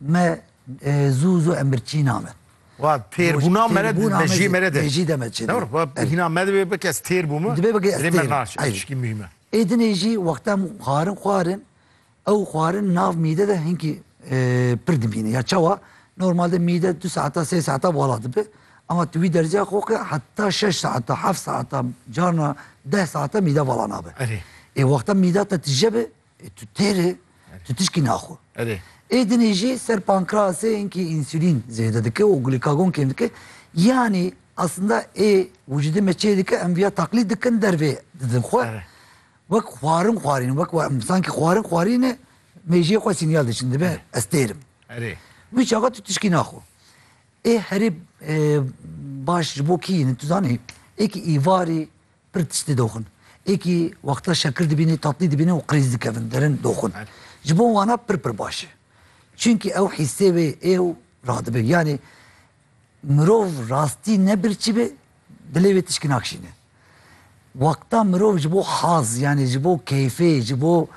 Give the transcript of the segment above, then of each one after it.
Me zû zû em bir çîna me. Wa têr bûna me re me jî me re de. Jî de me çê. Dewr wa hîna me divê bike ez têr bûme. Divê bike ez têr. Me naş eşkî mühim e. Êdinê jî wexta em xwarin xwarin ew xwarin nav mîde de hinkî pir dimîne. Ya çawa normalde mîde du saeta sê saeta wala dibe. Ama tu wî derziya xwe ke heta şeş saeta heft saeta carna deh saeta mîde wala nabe. Erê. Ê wexta mîda te tije be E tu têrê, tu tişkî naxwe. Erê. Ê dinê jî ser pankrasê hinkî însulîn zêde dike û glîkagon kêm dike. Yanî aslında ê wicîdê me çê dike em vîya taklîd dikin dervê didin xwe. Erê. Wek xwarin xwarîn wek sankî xwarin xwarîne mêjiyê xwe sînyal diçin dibe ez têrim. Erê. Wî çaxa tu tişkî naxwe. Ê herê e, baş ji bo kî tu zanî ê kî îvarî Pir tiştî doxin. Êkî wexta şekir dibînî, tatlî dibînî û qirîz dikevin derin doxin. Ji bo wana pir pir baş e. Çimkî ew hîssê wê ê û radibin. Yanî mirov rastî ne birçî be dilê wê tişkî nakişîne. Wexta mirov ji bo haz yanî ji bo keyfê ji bo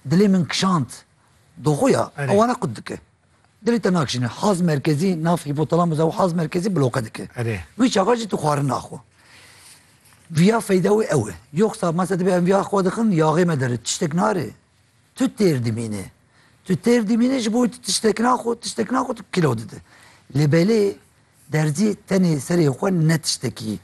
dilê min kişand doxuya ew wana qut dike. Dilê te nakişîne. Haz merkezî nav hîpotalamus ew haz merkezî bloke dike. Erê. Wî çaxa jî tu xwarin naxwe. Viya feyda wê ew e. Yoksa masa dibe em viya xwe dixin yaxê me derit tiştek nare. Tu têr dimîne. Tu têr dimîne ji bo tu tiştek naxwe, tiştek naxwe tu kilo dide. Lê belê Derzî tenê serê xwe ne tiştekî.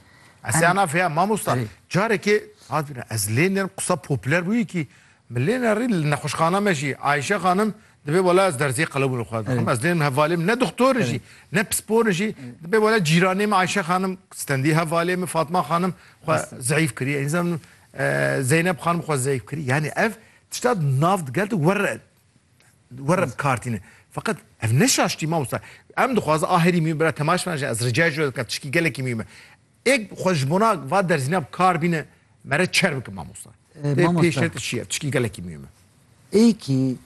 Ez ê anafê ya mamosta. Carekê hatibîne ez lênêrim qisa popüler bûyî kî min lênerî li nexweşxana me jî Ayşe xanim dibê wela ez derzê qelebûnê xwe dixwim ez lênim hevalê min ne doxtorin jî ne pisporin jî dibê wela cîranê min Ayşe xanim stendî hevalê min Fatma xanim xwe zeyîf kirî înzan Zeynep xanim xwe zeyîf kirî yanî ev tişta nav digel de werre were bi kar tîne. Feqet ev ne şaştî mamosta. Em dixwazin a herî mî bira temaş bina jî ez ricayê ji we dikim tişkî gelekî mî me. Ê xwe ji bona va derzîna bi kar bîne mere çer bikim mamosta. Ê pêşer te çiye tişkî gelekî mî me. Ê kî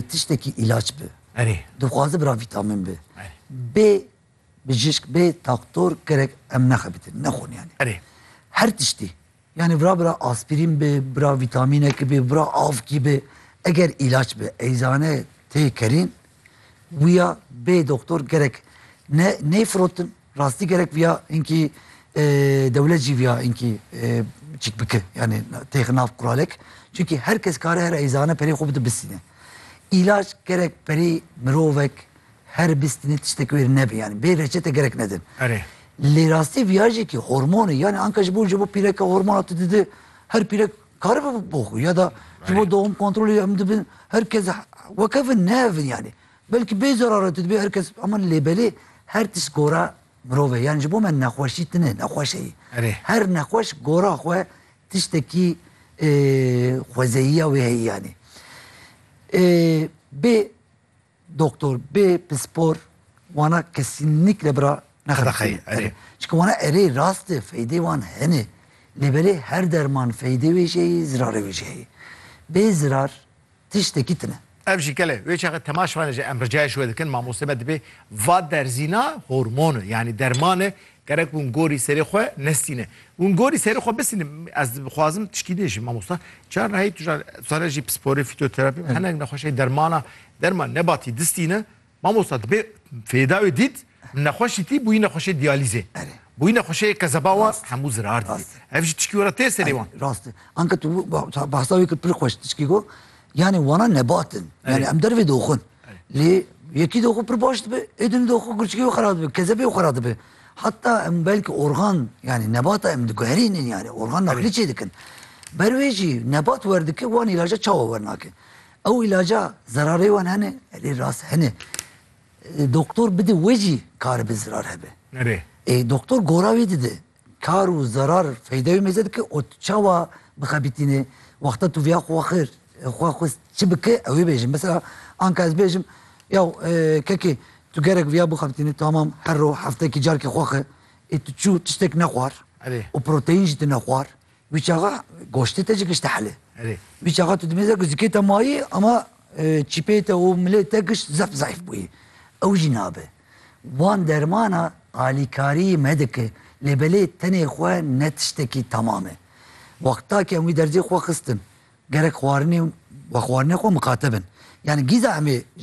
tiştekî îlaç bi. Erê. Dixwaze bira vîtamîn bi. Erê. Bê Bijîşk bê doktor gerek em nexebitin, nexweniyanê. Erê. Her tiştî. Yanî vira bira aspîrîn bi, bira vîtamînekî bi, bira avkî bi. Eger îlaç bi eyzane tê kerîn wîya bê doktor gerek ne ney firotin. Rastî gerek vîya hinkî dewlet jî vîya hinkî çik bike. Yanî têxi nav kuralek. Çunkî her kes kare her eyzane perê xwe bide bisîne. Îlaç gerek perê mirovek Her bîst nê tiştek wêr nebe yanî bê reçete gerek nedin. Erê. Lê rastî viyajekî hormonê yanî anka ji bo ji bo pîreke hormona tu dide her pîrek karibe bo xwe ya da ji bo doğum kontrolê em dibin her kes wekevin nehevin yanî. Belkî bê zerare tu dibê her kes ama lê belê her tişt gora mirov e yanî ji bo me nexweşî tune nexweş heye. Erê. Her nexweş gora xwe tiştekî xwezeyiya wê heye yanî. Bê Doktor bê pispor wana kesînlikle bira nexirxeyê. Erê. Çika wana erê rast e, feydê wan hene. Lê belê her derman feydê wê jî heye, zirarê wê jî heye. Bê zirar tiştekî tine. Ev jî gel e. Wê çaxê tema şivane jî em ricayê ji we dikin, mamoste me dibê va derzîna hormon e, yanî derman e Gerek hûn gorî serê xwe nesîne. Hûn gorî serê xwe bisîne. Ez dixwazim tişkî din jî mamosta. Çar rehî tu jar sare jî pisporê, fîtoterapî û hinek nexweşê dermana derma nebatî distîne. Mamosta dibe fêda wê dît nexweşî tî bûyî nexweşê diyalîzê. Erê. Bûyî nexweşê kezeba wan hemû zirar didî. Ev jî tişkî were tê serê wan. Rast e. Anka tu behsa wê kir pir xweş tişkî got. Yanî wana nebat in. Yanî em dervê doxin. Lê yekî de xwe pir baş dibe, êdînî de xwe gurçikê wê xera dibe, kezebê wê xera dibe. Heta em belkî organ yanî nebata em diguherînin yanî organ naqlî çê dikin. Ber wê jî nebat werdike wan îlaca çawa wernake. Ew îlaca zerarê wan hene, erê rast hene. Doktor bide wê jî karibe zirar hebe. Erê. Ê doktor gora wê dide. Kar û zerar feyda wê mêze dike û tu çawa bixebitînê wexta tu vêya xwe xêr xwe xwest çi bike ew ê bêjin. Mesela anka ez bêjim ya kekê tu gerek vêya bixebitînê tamam her roj heftekî carkê xwe xe ê tu çû tiştek nexwar û proteîn jî tu nexwar Wî çaxa goştê te jî gişte helê. Erê. Wî çaxa tu di mêze ku zikê te mayî ama çîpeyê te û milê te gişt zef zayf bûyî. Ew jî nabe. Wan dermana alîkarîyî me dike lê belê tenê xwe ne tiştekî tamam e. Wexta ke em wî derzê xwe xistin gerek xwarinê û wexwarinê xwe miqate bin. Yanî gîza em ê